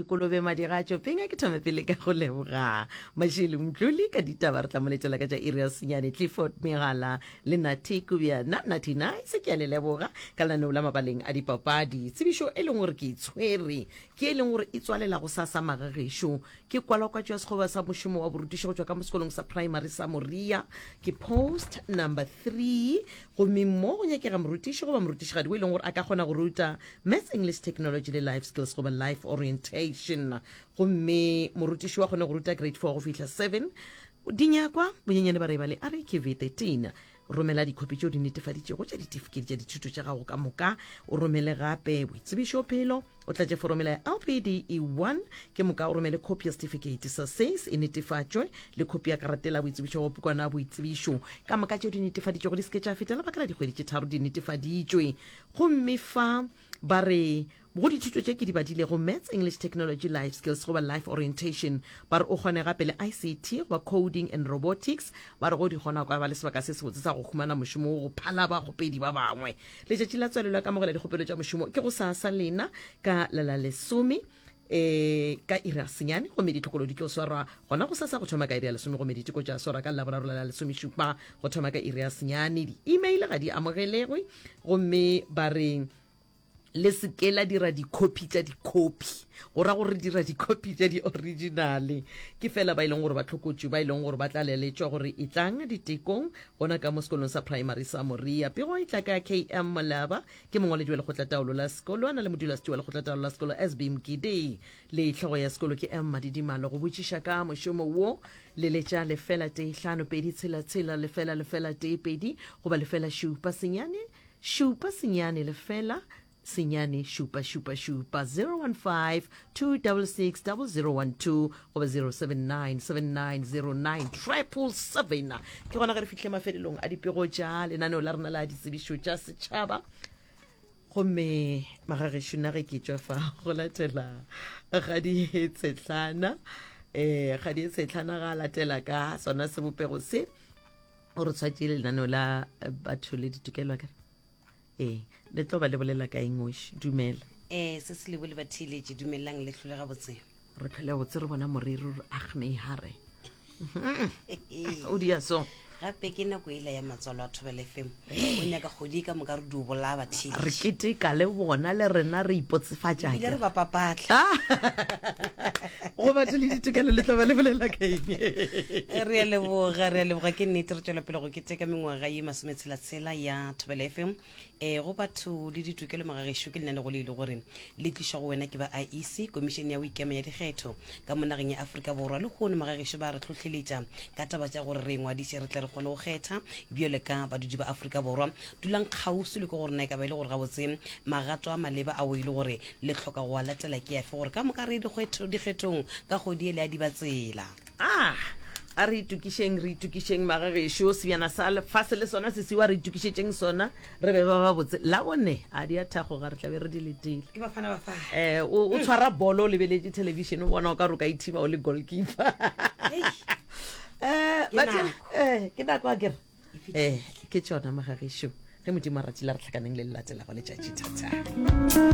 kolobe madira a tšopeng a ke thome pele ka go leboga mashele mtlole ka ditaba re tlamoletela ka tša iri ya senyane clifford megala le nati kubja na nati na e se ke ya le leboga ka lenaneo la mabaleng a dipapadi tsebišo e leng gore ke itshwere ke e leng gore e tswalela go sa sa magagešo ke kwalakwatšo ya sekgoba sa mošomo wa borutišo go tšwa ka mo sekolong sa primary sa moria ke post number three gomme mo go nyakega morutiši goba morutišigadi o e leng gore a ka kgona go ruta Maths, English, Technology le Life Skills goba Life Orientation. Gomme morutiši wa kgone go ruta grade 4 go fihla 7. Dinyakwa, bonyenyane ba reba le RAQV 13. Romela dikhopi tšeo di netefaditšego tša ditifiketi tša dithuto tša gago ka moka. O romele gape boitsebišo phelo. O tlatše foromela ya LPDE 1. Ke moka o romele khopi ya setifikeiti sa SACE e netefatšwe le khopi ya karatela boitsebišo go pukwana ya boitsebišo. Ka moka tšeo di netefaditšego di se ke tša feta lebaka la dikgwedi tše tharo di netefaditšwe. Gomme fa ba re go dithuto tše ke di badilego, Maths, English, Technology, Life Skills goba Life Orientation, ba re o kgone gape le ICT goba Coding and Robotics, ba re go di kgona o ka ba le sebaka se sebotse sa go humana mošomo wo go phala bakgopedi ba bangwe. Letšatši la tswalelo ya kamogela dikgopelo tša mošomo ke gosasa lena ka la la lesome. e ka iri a senyane gomme ditlhokolo di tlo swarwa gona go sasa go thoma ka iri ya lesome gomme diteko tša swarwa ka laboraro la lesomešupa go thoma ka iri ya senyane di-email ga di amogelegwe gomme ba re le seke la dira dikhopi tša dikhopi go ra gore dira dikhopi tša di-originale ke fela ba e leng gore ba tlhokotšwe ba e leng gore ba tla leletšwa gore e tlang ditekong gona ka mo sekolong sa primary sa moria pego e tla ka km molaba Ke mongwaledi wa lekgotlataolo la sekolo a na le modulasetšo wa lekgotlataolo la sekolo SB Mgidi le hlogo ya sekolo ke M Madidimalo. Go botšiša ka mošomo wo leletša lefela tee hlano pedi tshela tshela lefela lefela tee pedi goba lefela šupa senyane šupa senyane lefela senyane šupa šupa šupa 015 2660012 goba 0797909077 ke gona ge re fihle mafelelong a dipego tša lenaneo la rena la ditsebišo tša setšhaba gomme magagešo na ge ke tšwa fa go latela ga ditshetlana um ga ditshetlana ga latela ka sona sebopego se o re tshwatše lenaneo la batho le ditokelwa kere ee le tlo ba le bolela ka engoši dumela ee se se lebo le bathiiletše dumelelang le tlhole gabotse re phele botse re bona moriri re agnehare o dia so gape ke nako ela ya matswalo a thobele fm o nyaka kgodi ka moka re di o bolaya bathiile re keteka le bona le rena re ipotsefatša ile re bapapatla go batho le ditokelo le tloba le bolela ka eng re a leboga re a leboga ke nnete re tswela pele go keteka mengwaga ye masometshela Tsela ya Thobela FM e go batho le ditokelo magagešo ke lenaneo le e le gore le tlišwa go wena ke ba IEC komišene ya go ikema ya dikgetho ka mo nageng ya Afrika Borwa le kgono magagešo ba re tlhohleletša ka taba tša gore re ingwadiše re tle re kgone go kgetha bjale ka badudi ba Afrika Borwa dulang kgauswi le ke gore na e ka ba e le gore gabotse magato a maleba ao e le gore le tlhoka go a latela ke afe gore ka moka re ye dikgethong ka kgodi ele ya dibatsela a a re itokišeng re itokišeng magagešo sebjana sa lefase le sona se siwa re itokišetšeng sona re be ba ba botse la bone a di a thagoga re tlabe re di letile um o tshwara bolo o lebeletše television o bona o ka roka ithiba o le goalkeeper um ke nako a kere um ke tsona magagešo ge modimo a ratile re tlhakaneng le lelatelago letšatši thatha